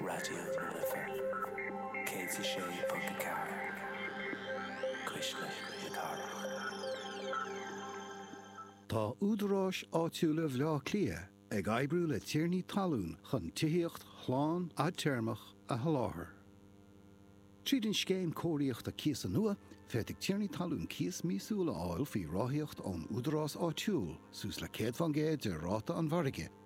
Raidió na Life 106.4, Cuisle na Cathrach. Tá Údaráis Áitiúla Bhaile Átha Cliath ag oibriú le tiarnaí talún chun tithíocht shlán fhadtéarmach a sholáthar. Tríd an Scéim Cóiríochta Cíosa nua, féadfaidh tiarnaí talún cíos míosúil a fháil faoi ráthaíocht ón údarás áitiúil, suas le 100% de ráta an mhargaidh.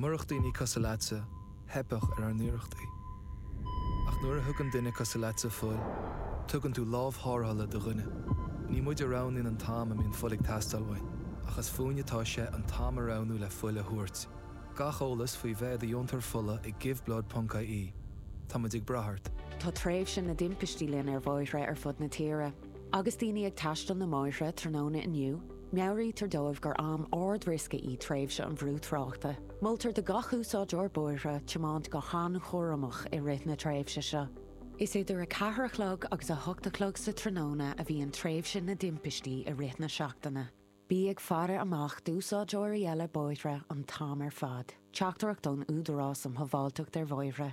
Murach daoine cosúil leatsa, theipfeadh ar ár n-iarrachtaí. Ach nuair a thugann duine cosúil leatsa fuil, tugann tú lámh thárrthala do dhuine. Ní muid a roghnaíonn an t-am a mbíonn fuil ag teastáil uainn, ach is fúinn atá sé an t-am a roghnú le fuil a thabhairt. Gach eolas faoi bheith i do dheontóir fola ag Giveblood ponc IE. Tá muid ag brath ort. Tá tréimhse na dtimpistí linn ar bhóithre ar fud na tíre. Agus daoine ag taisteal na mbóithre tráthnóna inniu, Meabhraítear dóibh gur am ard-riosca í tréimhse an bhrúthráchta. Moltar do gach úsáideoir bóithre tiomáint go han-chúramach i rith na tréimhse seo. Is idir 4 a chlog agus 8 a chlog sa tráthnóna a bhíonn tréimhse na dtimpistí i rith na seachtaine. Bí ag faire amach d'úsáideoirí eile bóithre an t-am ar fad. Teachtaireacht ón Údarás um Shábháilteacht ar Bhóithre.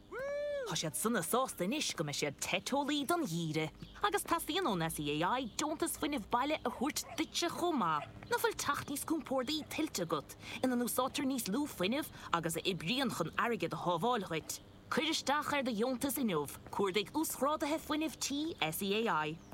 Tá siad sona sásta anois go mbeidh siad te teolaí don gheimhreadh agus teastaíonn ón SEAI deontas fuinnimh baile a thabhairt duitse chomh maith. Nach bhfuil teach níos compórdaí tuillte agat ina n-úsáidtear níos lú fuinnimh agus a oibríonn chun airgead a shábháil duit? Cuir isteach ar do dheontas inniu, Cuardaigh Uasghráduithe Fuinnimh Tí SEAI.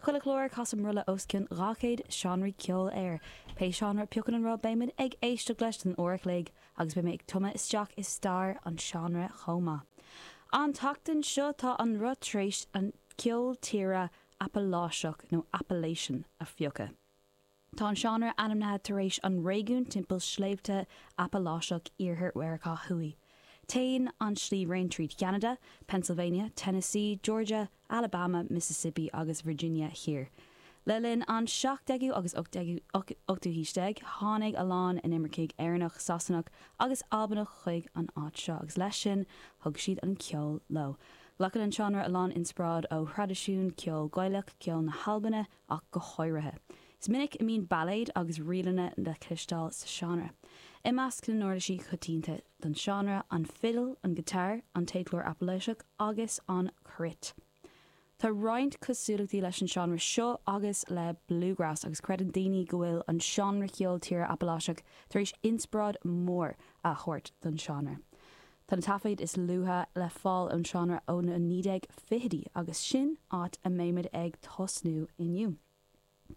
Chuile chlár casaim rolla os cionn 200 seánraí ceoil air. Pé seánra a piocann an roth beimid ag éisteacht leis don uair a chloig agus beidh mé ag tumadh isteach i stair an seánra chomh maith. An tseachtain seo tá an roth tar éis an ceol tíre Apaláiseach, nó Appalachian, a phiocadh. Tá an seánra ainmnithe tar éis an réigiún timpeall Sléibhte Apaláiseach Iarthar Mheiriceá Thuaidh. Téann an sliabhraon trí Ceanada, Pennsylvania, Tennessee, Georgia, Alabama, Mississippi agus Virginia Thiar. Le linn an 17ú agus 18ú haois déag tháinig a lán inimircigh Éireannach, Sasanach agus Albanach chuig an áit seo agus leis sin thug siad an ceol leo. Glacann an seánra a lán inspioráid ó thraidisiún ceol Gaelach, ceol na hAlbaine, ach go háirithe. Is minic a bíonn bailéid agus ríleanna le cloisteáil sa seánra. I measc na n-uirlisí coitianta don seánra, an fidil, an guitar, an téacsleabhar Apaláiseach agus an cruit. Tá roinnt cosúlachtaí leis an seánra seo agus le bluegrass agus creideann daoine go bhfuil an seánra ceol tíre Apaláiseach tar éis inspioráid mhór a thabhairt don seánra. Tá na taifid is luaithe le fáil den seánra ó na 1920idí agus sin áit a mbeimid ag tosnú inniu.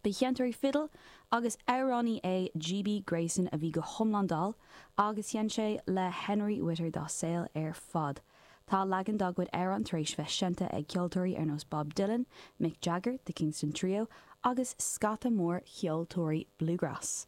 Ba sheinnteoir fidil agus amhránaí é GB Grayson a bhí go hiomlán dall agus sheinn sé le Henry Whitter dá shaol ar fad. Tá leagan dá gcuid amhrán tar éis bheith seinnte ag ceoltóirí ar nós Bob Dylan, Mick Jagger, The Kingston Trio agus scata mór ceoltóirí bluegrass.